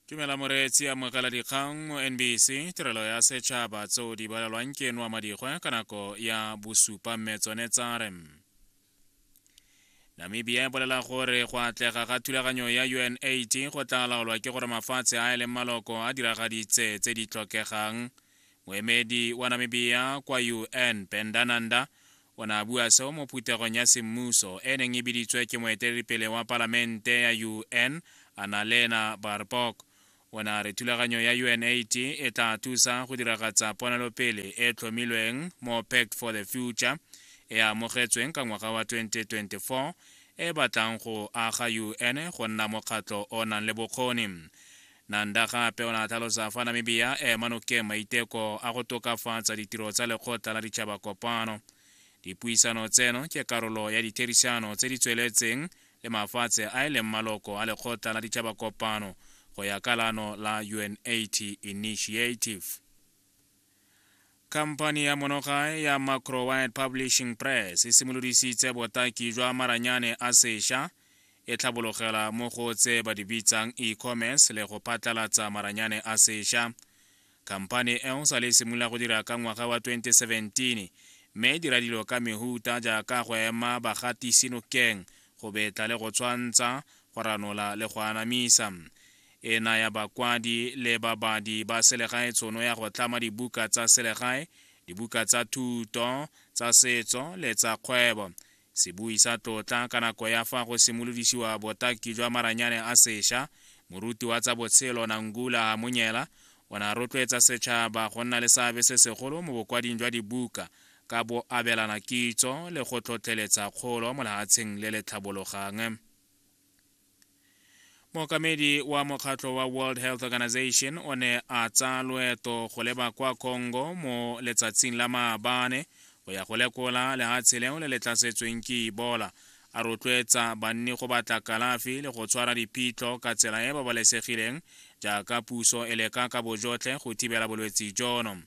tumela moreetsi amogela dikgang mo nbc tirelo ya setšhaba tseo di balelwang ke eno wa madikgwe ka nako ya bosupa mme tsone tsa re namibia e bolela gore go atlega ga thulaganyo ya un8 go tla laolwa ke gore mafatshe a e leng maloko a diragaditse tse di tlhokegang Moemedi wa Namibia kwa UN Ben Dananda o ne a bua seo mo phuthegong ya semmuso e neng e biditswe ke moeteledipele wa palamente ya UN Annalena Baerbock. O ne a re thulaganyo ya UNAID e tla thusa go diragatsa ponelopele e tlhomilweng mo Pact for the Future e amogetsweng ka ngwaga wa 2024 e batlang go aga UN go nna mokgatlho o nang le bokgoni. Nanda gape o ne a tlhalosa fa Namibia e ema nokeng maiteko a go tokafatsa ditiro tsa Lekgotla la Ditšhaba Kopano. Dipuisano tseno ke karolo ya ditherišano tse di tsweletseng le mafatshe a e leng maloko a Lekgotla la Ditšhaba Kopano go ya ka laano la UNAIDS Initiative. khamphani ya monogae ya macrowide publishing press e simolodisitse botaki jwa maranyane a sesha e tlhabologela mo go tse ba di bitsang e-commerce le go phatlalatsa maranyane a sesha khamphani eo sa le simolola go dira ka ngwaga wa 2017 mme e dira dilo ka mehuta jaaka go ema bagatisi nokeng go betla le go tshwantsha go ranola le go anamisa e naya bakwadi le babadi ba selegae tshono ya go tlama dibuka tsa selegae, dibuka tsa thuto, tsa setso le tsa kgwebo. Sebui sa tlotla ka nako ya fa go simolodisiwa botaki jwa maranyane a sesha, moruti wa tsa botshelo Nangula Hamunyela o ne a rotloetsa setšhaba go nna le seabe se segolo mo bokwading jwa dibuka ka bo abelana kitso le go tlhotlheletsa kgolo mo lehatsheng le le tlhabologang. mookamedi wa mokgatlho wa world health organization o ne a tsaya loeto go leba kwa congo mo letsatsing la maabane go ya go lekola lehatshe leo le le tlasetsweng ke ibola a rotloetsa banni go batla kalafi le go tshwara diphitlho ka tsela e e babalesegileng jaaka puso e leka ka bojotlhe go thibela bolwetse jono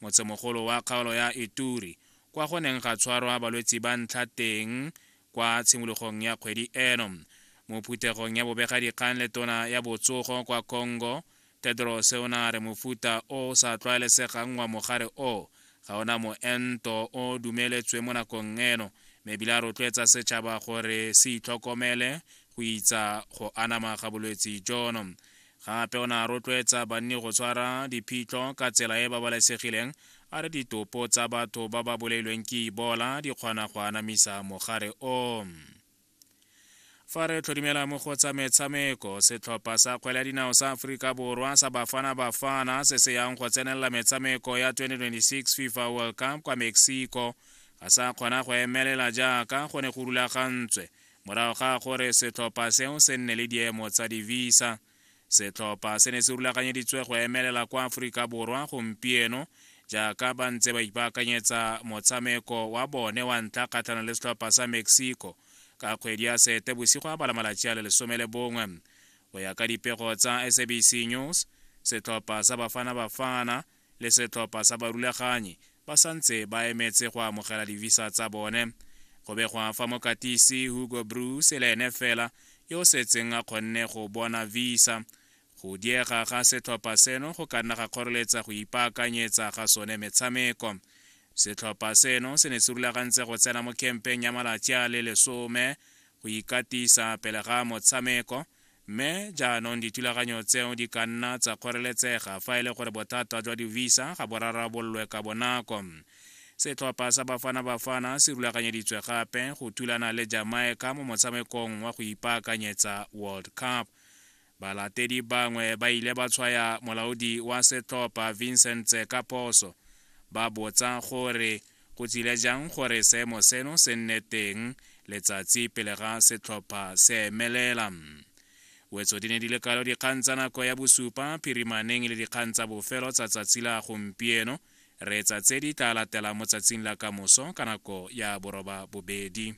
motsemogolo wa kgaolo ya Ituri, kwa go neng ga tshwarwa balwetsi ba ntlha teng kwa tshimologong ya kgwedi eno. Mo phuthegong ya bobegadikgang le tona ya botsogo kwa Congo, Tedros o ne a re mofuta o o sa tlwaelesegang wa mogare o ga o na moento o o dumeletsweng mo nakong eno mme ebile a rotloetsa setšhaba gore se itlhokomele go itsa go anama ga bolwetsi jono. Gape o ne a rotloetsa banni go tshwara diphitlho ka tsela e e babalesegileng, a re ditopo tsa batho ba ba bolailweng ke Ebola di kgona go anamisa mogare o. Fa re tlhodimela mo go tsa metshameko, setlhopha sa kgwele ya dinao sa Aforika Borwa sa Bafana Bafana se se yang go tsenelela metshameko ya 2026 FIFA World Cup kwa Mexico ga sa kgona go emelela jaaka go ne go rulagantswe Morago ga gore setlhopha seo se nne le diemo tsa divisa, setlhopha se ne se rulaganyeditswe go emelela kwa Aforika Borwa gompieno jaaka ba ntse ba ipaakanyetsa motshameko wa bone wa ntlha kgatlhanong le setlhopha sa Mexico ka kgwedi ya sete bosigo a bala malatsi a le lesome le bongwe go ya ka dipego tsa sabc news setlhopha sa bafana bafana le setlhopha sa barulaganyi ba santse ba emetse go amogela divisa tsa bone go begwa fa mokatisi hugo bruce e le ene fela yo o setseng a kgonne go bona visa go diega ga setlhopha seno go ka nna ga kgoreletsa go ipaakanyetsa ga sone metshameko setlhopha seno se ne se rulagantse go tsena mo kempeng ya malatsi a le lesome go ikatisa pele ga motshameko Mme jaanong dithulaganyo tseo di ka nna tsa kgoreletsega fa e le gore bothata jwa di-visa ga bo rarabololwe ka bonako. Setlhopha sa Bafana Bafana se rulaganyeditswe gape go thulana le Jamaica mo motshamekong wa go ipaakanyetsa World Cup. Balatedi bangwe ba ile ba tshwaya molaodi wa setlhopha Vincent Tse ka phoso, ba botsa gore Go tsile jang gore seemo seno se nne teng letsatsi pele ga setlhopha se emelela? Wetso di ne di le kalo dikgang tsa nako ya bosupa phirimaneng le dikgang tsa bofelo tsa tsatsi la gompieno. Reetsa tse di tla latelang mo tsatsing la kamoso ka nako ya boroba bobedi.